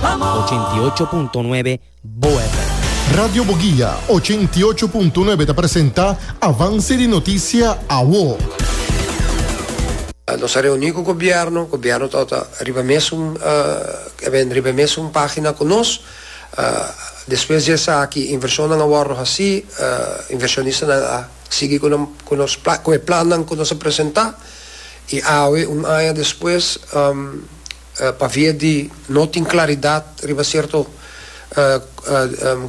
Ochenta i ocho punto nuebe Bo FM. Radio Boguia ochenta i ocho punto nuebe ta presenta Avance di Noticia Awo. Nos a reuni cu gobierno, gobierno ta ota riba mesun e ben riba mesun pagina cu nos. Despues di esaki inversionnan a wordo haci, inversionistanan a sigui cu nan cu nos cu e plannan cu nos a presenta y awe un aña despues pavia di no tin klaridat riba sierto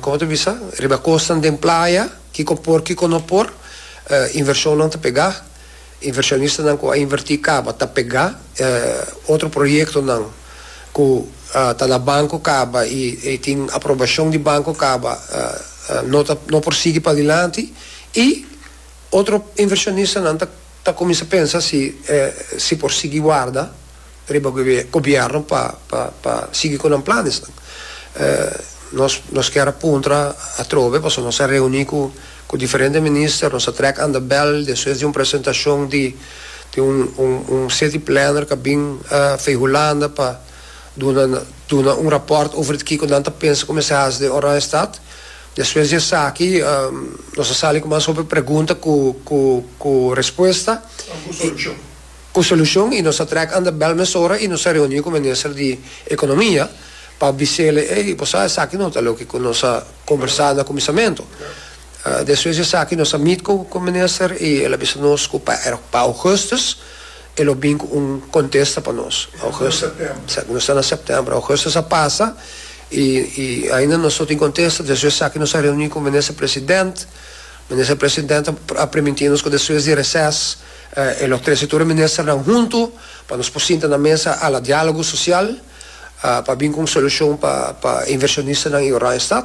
komo ta bisa riba kosnan den playa kiko por kiko no por invershonnan ta pegá invershonistanan ku a invertí kaba ta pegá otro proyektonan ku ta na banko kaba i i tin aprobashon di banko kaba no ta no por sigui padilanti i otro invershonistanan ta ta kuminsá pensa si si por sigui warda. riba gobierno pa pa sigui cu nan planesnan. Nos nos kier a puntra atrobe pasobra nos a reuni cu cu diferente minister, nos a trek anda bel despues di un presentacion di di un un un city planner cu a bin vee Hulanda pa duna duna un rapport over kico nan ta pensa cu mester haci den Oranje stad. Despues di esaki nos a sali cu mas hopi pregunta cu cu cu respuesta y. Ku solushon i nos a trèk anda bèl mesora i nos a reuní ku minister di Ekonomia pa bis'ele, ey, bo sa esaki no ta loke ku nos a kombersá na kuminsamentu. Despues di esaki nos a mit ku ku minister i el a bisa nos ku pa er pa Ougustus e lo bin ku un kontesta pa nos. Augustus, esaki nos ta na Sèptèmber, Augustus a pasa i i ainda nos no tin kontesta. Despues di esaki nos a reuní ku minister President, minister President a primintí nos ku despues di reses, E lo trese tur e ministernan huntu pa nos por sinta na mesa ala dialogo social pa bin cu un solucion pa pa e inversionistanan y Oranjestad.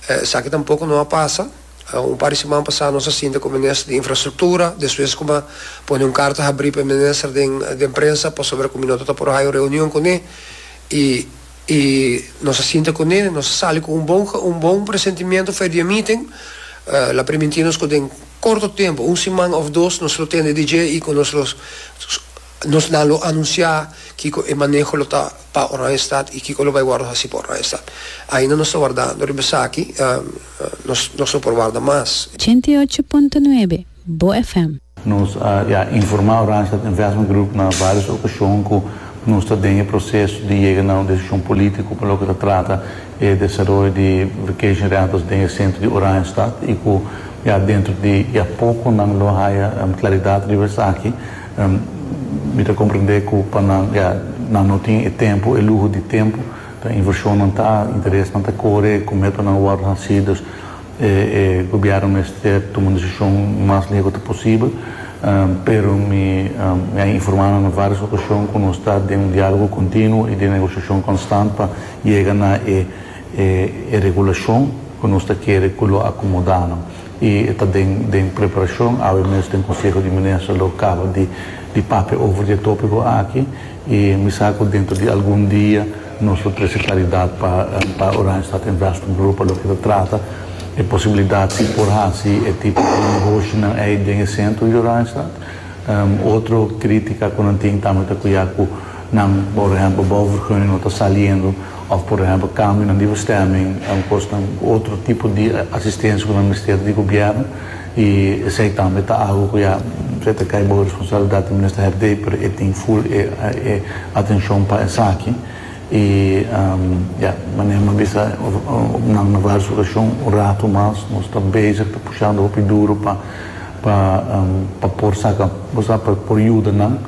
Esaki tampoco no a pasa. Un par di siman pasa nos a sinta cu e minister di infrastructura, despues cu mi a pone un carta habri pa e minister den den prensa pasobra cu mi no ta por hayo un reunion cune y I nos a sinta kuné, nos a sali ku un bon un bon presentimiento for e dia meeting. Lo a primintí nos ku den korto tempu, un siman òf dos, nos lo tende dje i ku nos lo nos nan lo anunsiá kiko e maneho lo ta pa Oranjestad i kiko lo bai wòrdu hasi pa Oranjestad. Ainda nos ta wardando riba esaki, nos nos lo por warda mas. Ochenta i ocho punto nuebe. Bo FM. Nos a ya informá Randstad Investment Group na vários okashon ku nos ta den e proseso di yega na un desishon polítiko pa loke ta trata e desaroyo di vacation rentals den e sentro di Oranjestad i ku ya dentro di ya poko nan lo haya klaridat riba esaki. Mi ta komprendé ku pa nan ya nan no tin e tempu, e luho di tempu, ta invershonnan ta, interesnan ta kore, kume pa nan wòrdu hasí. Dus. E gobièrnu mester tuma un desishon mas legu ta posibel, pero mi mi a informá nan na vários okashon ku nos ta den un diálogo kontinuo i den negosiashon konstant pa yega na e e regulashon ku nos ta kere ku lo akomodá nan. I e ta den den preparashon, awe mes den Konseho di Minister lo kaba di di papia over di e tópiko aki i mi sa ku dentro di algun dia, Nos lo trese claridad pa pa Oranjestad Investment Group pa loke ta trata e posibilidad si por haci e tipo di negoshinan ey den e centro di Oranjestad. Otro critica cu nan tin tambe ta cu ya cu nan por ehempel bouwvergunning no ta saliendo of por ehempel cambionan di bestemming, cosnan, otro tipo di asistencia cu nan mester di gobierno. I esei tambe ta agu ku ya presa ta kai bow e responsabilidat di Minister Herdey, pero e tin full e e atencion pa esaki. I ya, manera mi a bisa nan na varios ocasion un rato mas nos ta bezig ta pushando hopi duro pa pa pa por saca, bo sa, pa por yuda nan.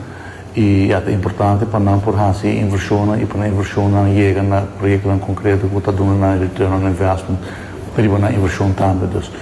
I ya, ta importante pa nan por haci e inversionnan i pa nan inversionnan yega na proyectonan concreto cu ta duna nan e return on investment riba nan inversion tambe. Dus.